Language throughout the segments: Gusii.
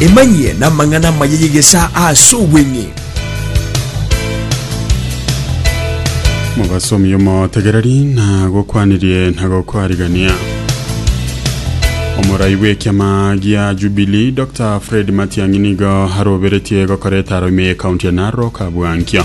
Emanyie n'amang'ana amaya y'egesaa ase obweng'e. mobasomi omotegereri nagokwanirie nagokwarigania omorai bw'ekiama gia jubilee dr fred matiang'i nigo aroberetie gokora etaro ime y'ekaunti ya narok abwankio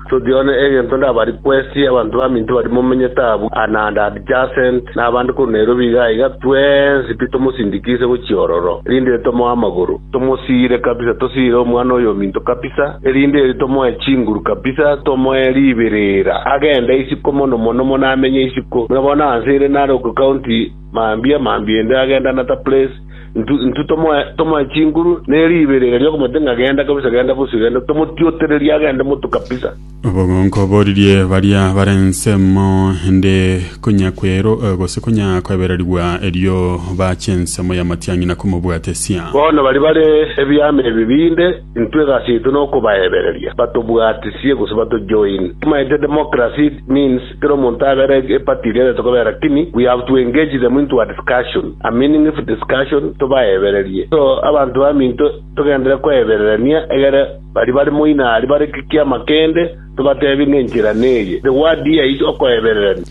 Toti one egento ndabari kwesie abanto baminto baria momenyete abwo, na and adjacent, na abande korwa Nairobi iga aiga, twensi pi tomosindikise gochia ororo, erinde ere tomoe amagoro, tomosiire kabisa, tosiire omwana oyo ominto kabisa, erinde ere tomoe chinguru kabisa, tomoe ribirira, agende isiko mono mono mono amenye isiko. Buna bono anse ere nare okocounti mambia, mambia ende agendanata place. Intwe intwe tomoe tomoe chinguru ne riibe ere igoro y'okomotwe ng'a genda kabisa, genda bosio, genda, tomotiotererie agende motu kabisa. Obogonka oboririe baria bare ensemo ende konya kwero, eh, gose konya kwebererigwa, erio baache ensemo y'amatiang'ina komobwatesia. Bono baria bare ebiama ebi binde, intwe egasi yaito nokobaebereria, batobwatisie gose batojoin. Tomaete democracy means Kera omonto abere a party eria aretete kobera lakini we have to engage them into a discussion a meaningful discussion tobaebererie so abanto baminto togendere koebererania egere baria bare moina aria bare gekiama kende tobatebie ng'a enchera neye the word here is okoebererania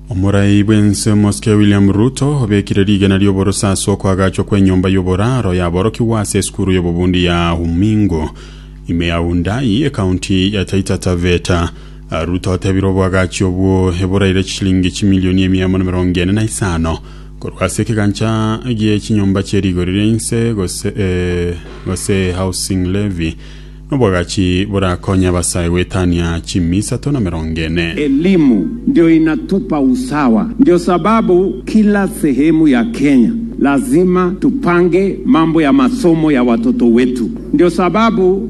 Omorai bw'ense omosike William Ruto obekire rigena ri'oborosa ase okoagachwa kw'enyomba y'oboraro yaborokigwa ase esukuru y'obobundi ya Umingo ime ya Wundayi, ekaunti ya Taita Taveta. Ruto otebire oboagachi obwo eboraire chishilingi chimilioni emia amo na emerongo ene na isano korwa ase ekegancha gie chinyomba chie rigori ria inse gose eh, gose housing levy noboagachi borakonye abasae goetania chimi isato na emerongo ene. Elimu ndio inatupa usawa ndio sababu kila sehemu ya Kenya lazima tupange mambo ya masomo ya watoto wetu ndio sababu.